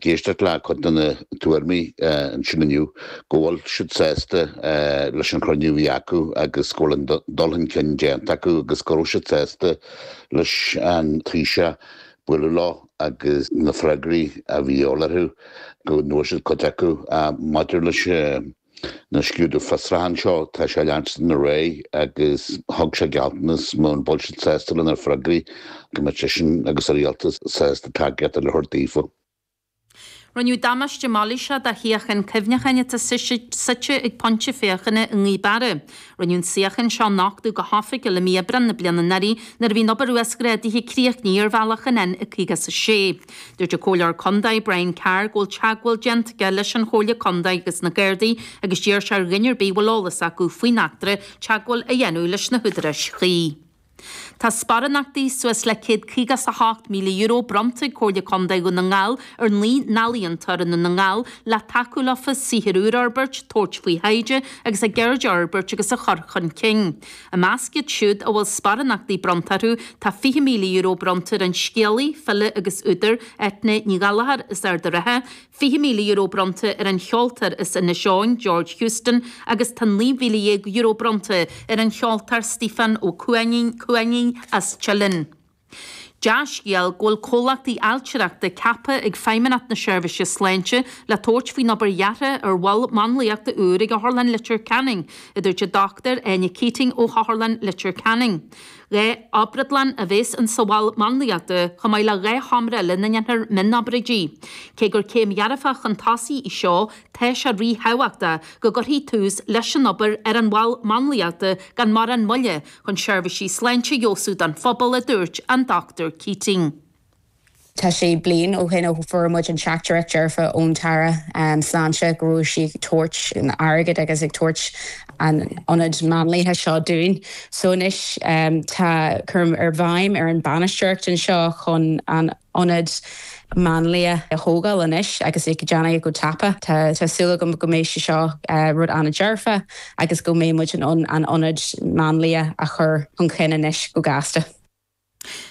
d'éisteacht le cuid de na tuairmí ansin inniu, go bhfuil siad sásta leis an chruinniú a bhí acu agus go bhfuil an dul chun cinn déanta acu agus go raibh siad sásta leis an Taoiseach bualadh leo agus na freagraí a bhí de dhíth orthu go bhfuair siad cuid acu. Maidir leis an. na scrúduithe fiosraithe anseo, tá sé ag leanstan ar aghaidh agus thug sé gealltanas muna bhfuil siad sásta lena freagraí go mbeadh seisean agus a rialtas sásta tacaíocht eile a thabhairt daofa. Rinneadh damáiste mailíseach do shuíochán cuimhneacháin atá suite ag pointe féachana i nGaoth Barra. Rinneadh an suíochán seo a nochtadh go hoifigiúil i mí Aibreán na bliana anuraidh nuair a bhí an obair uasghrádaithe críochnaithe ar bhealach an N56. Dúirt an Comhairleoir Contae, Brian Carr, go bhfuil teagmháil déanta aige leis an Chomhairle Contae agus na Gardaí agus d'iarr sé ar dhuine ar bith a bhfuil eolas acu faoin eachtra teagmháil a dhéanamh leis na húdaráis chuí. Tá sparánachtaí suas le €158,000 bronnta ag Comhairle Contae Dhún na nGall ar naoi n-ealaíontóir i nDún na nGall le tacú leofa saothar úr a fhorbairt, tabhairt faoi thaighde agus a gceird a fhorbairt agus a chur chun cinn. I measc iad siúd a bhfuil sparánachtaí bronnta orthu tá €20,000 bronnta ar an scéalaí, file agus údar, Eithne Ní Ghallchobhair as Ard an Rátha, €20,000 bronnta ar an cheoltóir as Inis Eoghain, George Houston agus tá €19,000 bronnta ar an cheoltóir Stiofán Ó Cuinneagáin as Teileann. Dea-scéal go bhfuil comhlachtaí ailtireachta ceaptha ag Feidhmeannacht na Seirbhíse Sláinte le tabhairt faoin obair dheartha ar mhol máinliachta úr ag Otharlann Litir Ceanainn, a dúirt an Dr Áine Keating ó Otharlann Litir Ceanainn. Dhá obrádlann a bheas in sa mhol máinliachta, chomh maith le dhá sheomra eile ina ndéanfar mionobráidí. Cé gur céim dhearfach chun tosaigh í seo, tá sé rí-thábhachtach go gcuirfí tús leis an obair ar an mhol máinliachta gan mórán moille, chun seirbhísí sláinte a fheabhsú don phobal, a dúirt an Dr Keating. Tá sé bliain ó shin ó fuair muid an teachtaireacht dearfa ón tAire Sláinte go raibh sí ag tabhairt airgid agus ag tabhairt an ionaid máinliachta seo dúinn. So anois tá cúram ar Fheidhm ar an bhainisteoireacht anseo chun an. ionad máinlia a thógáil anois agus é a dhéanamh go tapa. Tá súil agam go mbeidh sé seo rud an-dearfa agus go mbeidh muid in ann an ionad máinlia a chur chun cinn anois go gasta.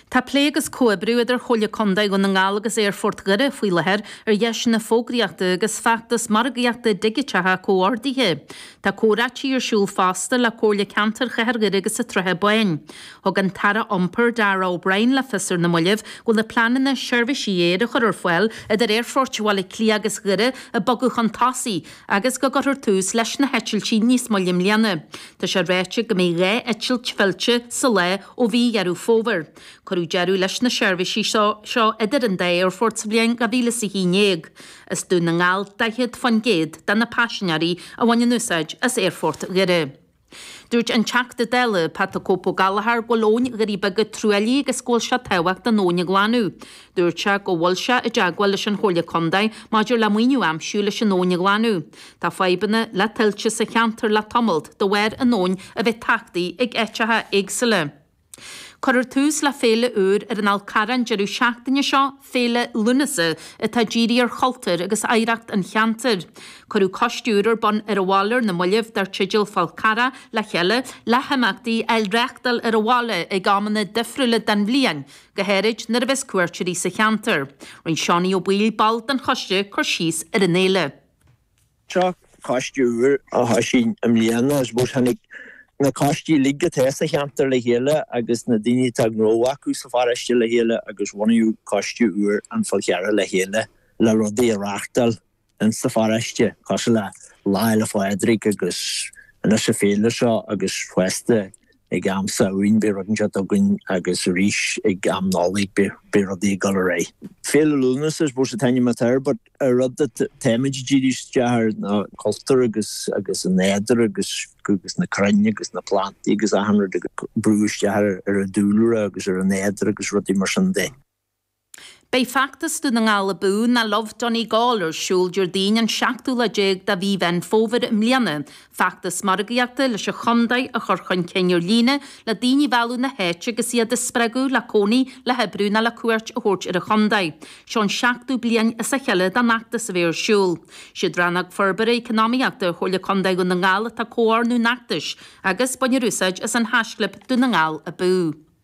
Tá plé agus comhoibriú idir Comhairle Contae Dhún na nGall agus Aerfort Dhoire faoi láthair ar dheiseanna fógraíochta agus feachtas margaíochta digiteacha comhordaithe. Tá comhráití ar siúl fosta le Comhairle Ceantair Chathair Dhoire agus an tSratha Báin. Thug an tAire Iompair, Darragh O'Brien le fios ar na mallaibh go bhfuil na pleananna seirbhísí aeir a chur ar fáil idir Aerfoirt Bhaile Átha Cliath agus Dhoire ag bogadh chun tosaigh agus go gcuirfear tús leis na heitiltí níos moille i mbliana. Tá sé ráite go mbeidh dhá eitilt fillte sa lá ó mhí Dheireadh Fómhair. Cuireadh deireadh leis na seirbhísí seo idir an dá aerfort sa bhliain 2011. Is as Dún na nGall 40% de na paisinéirí a bhaineann úsáid as Aerfort Dhoire. Dúirt an Teachta Dála Pat 'The Cope' Ó Gallagher go bhfuil Abhainn Ghaoth Beara truaillithe agus go bhfuil sé tábhachtach an abhainn a ghlanadh. Dúirt sé go bhfuil sé i dteagmháil leis an Chomhairle Contae maidir le maoiniú a aimsiú leis an abhainn a ghlanadh. Tá fadhbanna le tuilte sa cheantar le tamalt de bharr an abhainn a bheith tachtaithe ag áiteacha éagsúla. Cuirfear tús le féile úr ar an Fhál Carrach an deireadh seachtaine seo, Féile Lúnasa, atá dírithe ar chultúr agus oidhreacht an cheantair. Cuireadh coiste úr ar bun ar an bhaile ar na mallaibh dar teideal Fál Carrach le Chéile, le himeachtaí a reáchtáil ar an bhaile ag amanna difriúla den bhliain, go háirid nuair a bheas cuairteoirí sa cheantar. Rinne Seánie Ó Baoill, ball den choiste, cur síos ar an fhéile. Seo coiste úr a thoisigh i mbliana. I suppose tháinig na coistí uilig atá sa cheantar le chéile agus na daoine a tá gnó acu sa pharóiste le chéile agus bunaíodh coiste úr An Fál Carrach le Chéile le rudaí a reáchtáil ins sa pharóiste cosúil le Lá Fhéile Phádraig agus anois a féile seo agus fosta Ag am Samhain beidh rud annseo againn agus arís ag am Nollaig beidh rudaí ag dul ar aghaidh. Féile Lúnasa I suppose a t-ainm atá air but a rud that táimid ag díriú isteach air ná cultúr agus an nádúr agus na crainn agus na plantaí agus achan rud ag brú isteach ar a dúlra agus ar an nádúr agus rudaí mar sin de. Beidh Feachtas Dún na nGall Abú ná Love Donegal ar siúl Déardaoin an seachtú lá déag de mhí Mheán Fómhair i mbliana, feachtas margaíochta leis an chontae a chur chun cinn ar líne, le daoine a mhealladh na háite agus iad a spreagadh le cónaí, le hoibriú ná le cuairt a thabhairt ar an chontae. Seo an seachtú bliain as a chéile don fheachtas a bheith ar siúl. Siad Rannóg Forbartha Eacnamaíochta Chomhairle Contae Dhún na nGall atá ag comhordú an fheachtais agus baintear úsáid as an haischlib Dún na nGall Abú.